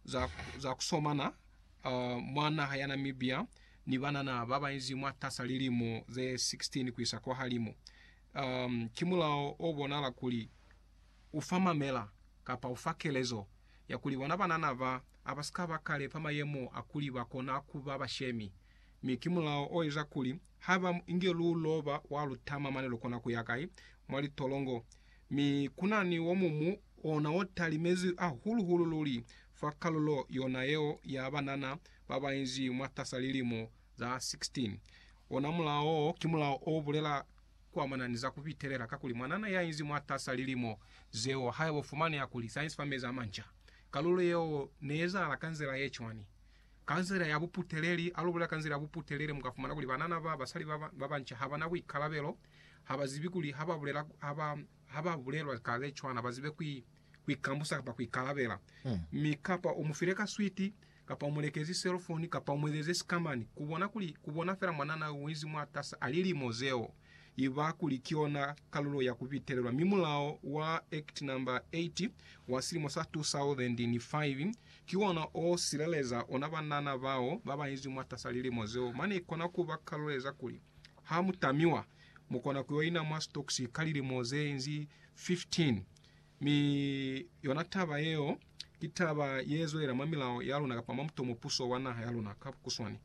za ku somana mwa naha ya Namibia ni banana ba banzi mwatas'a lilimo ze 16 ku isa kwahalimu. Ki mulao o bonahala kuli u fa mamela kapa u fa kelezo ya kuli bona banana ba a ba si ka ba kale fa mayemo a kuli ba kona ku ba bashemi, mi ki mulao o eza kuli Haba mu inge lu loba wa lu tama mane lu kona ku ya kai? Mwa litolongo. Mi ku na ni wo mumu, ona wo talimezwi hahulu hulu luli fa kalulo yona yeo ya banana ba ba inzi mwatasa lilimo za 16. Ona mulao wo ki mulao o bulela kuamana ni za ku pitelela, kakuli mwanana ya inzi mwatasa lilimo zeo, haiba u fumaneha kuli sa inzi fa mezi a manca. Kalulo yeo ne ezahala ka nzila ye cwani? Ka nzila ya buputeleli, a lu bulela ka nzila ya buputeleli, mu ka fumana kuli banana ba basali ba ba banca ha ba na buikalabelo, ha ba zibi kuli ha ba bulela, ha ba, ha ba bulelwa ka ze cwana, ba zibe ku, ku ikambusa kapa ku ikalabela. Mi kapa u mu file ka switi, kapa u mu lekezi selofoni, kapa u mu ezeze sikamani, ku bona kuli, ku bona fela mwanana yo u inzi mwatas'a lilimo zeo. iba kuli ki yona kalulo ya ku bitelelwa mi mulao wa Act No. 8 wa silimo sa 2005 ki wona o sileleza ona banana bao ba bainzi mwatasa lilimo zeo mane i kona ku ba kaluleza kuli ha mu tamiwa mu kona ku yo ina mwa stocks ka lilimo ze inzi 15 Mi yona taba yeo ki taba yezwelela mwa milao yaluna kapa mwa mutomo puso wa naha yaluna ka bukuswani.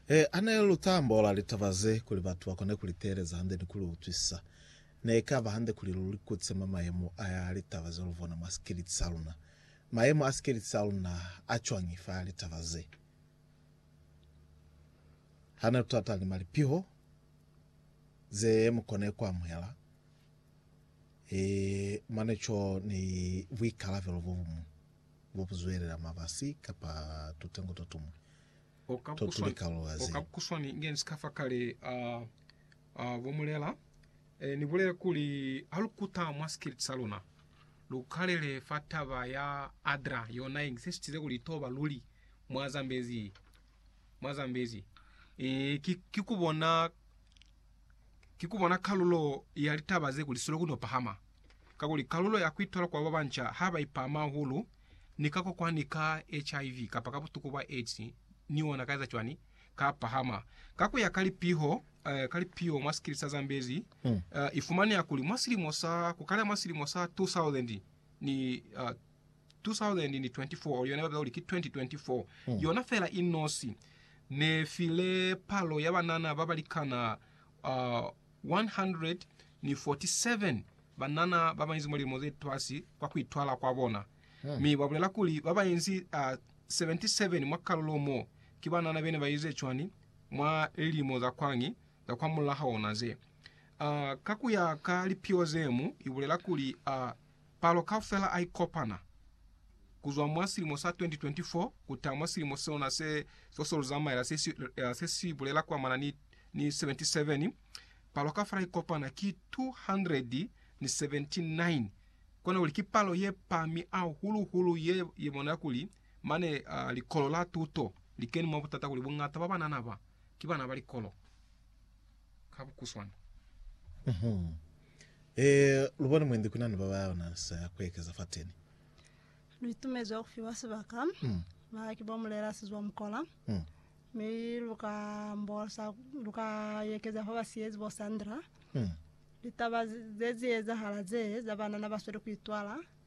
He, hane lu ta ambola litaba ze kuli batu ba kone ku li teeleza hande ni ku li utwisisa, ne ka ba hande kuli lu likutise mwa mayemo a litaba ze lu bona mwa sikeliti sa luna. Mayemo a sikeliti sa luna a cwañi fa litaba ze? Hane lu talata ni malipiho ze mu kone ku amuhela, He, mane co ni buikalabelo bo buñwi bo bu zwelela mabasi kapa tutengo to tumwi to tu li kalulo ya zeo. Kakuswani, nge ni si ka fa kale, a, a, bo mulela, e, ni bulele kuli, Ha lu kuta mwa sikiliti sa luna, lu kalele fa taba ya Adra, yona ye ngisesitize kuli ito ba luli mwa Zambezi, mwa Zambezi, e, ki, ki ku bona ki ku bona kalulo ya litaba ze kuli siloku no pahama, kakuli kalulo ya ku itola kwa babanca ha ba ipama hahulu ni ka kokwani ka HIV kapa ka butuku bwa AIDS ni ona ka eza cwani? Ka pahama. Ka ku ya ka lipiho, eh, ka lipiho mwa sikili sa Zambezi, mm. eh, ifumaneha kuli mwa silimo sa, ku kala mwa silimo sa 2000 ni, uh, 2024 oli yona babila kuli ki 2024 yona fela i nosi ne file palo ya banana ba balikana uh, 147 banana ba bainzi mwa lilimo ze twasi kwa ku itwala kwa bona mi ba bulela kuli ba bainzi uh, 77 mwa kalulo mo ki banana bene ba ize cwani mwa lilimo za kwani za kwa mulaho ona ze uh, ka ku ya ka lipio zemu i bulela kuli uh, Palo kaufela a ikopana, ku zwa mwa silimo sa 2024 ku ta mwa silimo sona se so se lu zamaela se si, eh, se si bulela kuamana ni, ni 77, palo kaufela ikopana ki 279. Kona kuli ki palo ye pami hahulu-hulu ye, ye bonela kuli mane uh, likolo la tuto li keni mwa butata kuli bungata ba banana ba ki bana ba likolo. Ka bukuswana. Mm-hmm. Ee, lubone mwendi kunani babayona sa kuekeza fateni. Luitumezwa kufiwa sibaka Mm. ba ki bo mulela sizwa mukola, Mm. mi luka mbosa luka yekeza fa basiyezi bo Sandra. Mm. Litaba ze- ze ziezahala ze za banana basweli kuitwala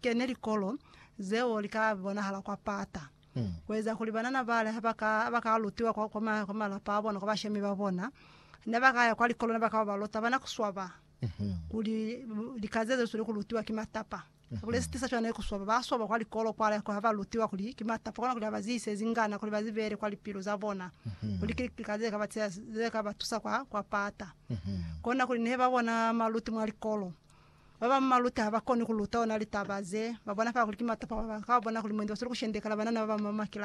kene likolo zeo li ka bonahala kwa pata, ku eza kuli banana bale ha ba ka, ha ba ka lutiwa kwa, kwa, ma, kwa malapa a bona, kwa bashemi ba bona, ne ba ka ya kwa likolo, ne ba ka yo ba lota bana ku swaba kuli lika ze ze swanile ku lutiwa ki matapa. Kuli se tisa cwana ki ku swaba, ba swaba kwa likolo kwale ha ba lutiwa kuli ki matapa, kona kuli ha ba ziise zingana kuli ba zi bele kwa lipilu za bona, kuli ki lika ze ka ba tshela, ze ka ba tusa kwa, kwa pata. Kona kuli ne ba bona maluti mwa likolo. Ba ba mu maluta ha ba koni ku luta ona litaba ze ba bona fela kuli ki matopo ha ba ka bona kuli mwendi wa swanela ku shendekela banana ba ba mu makilasini.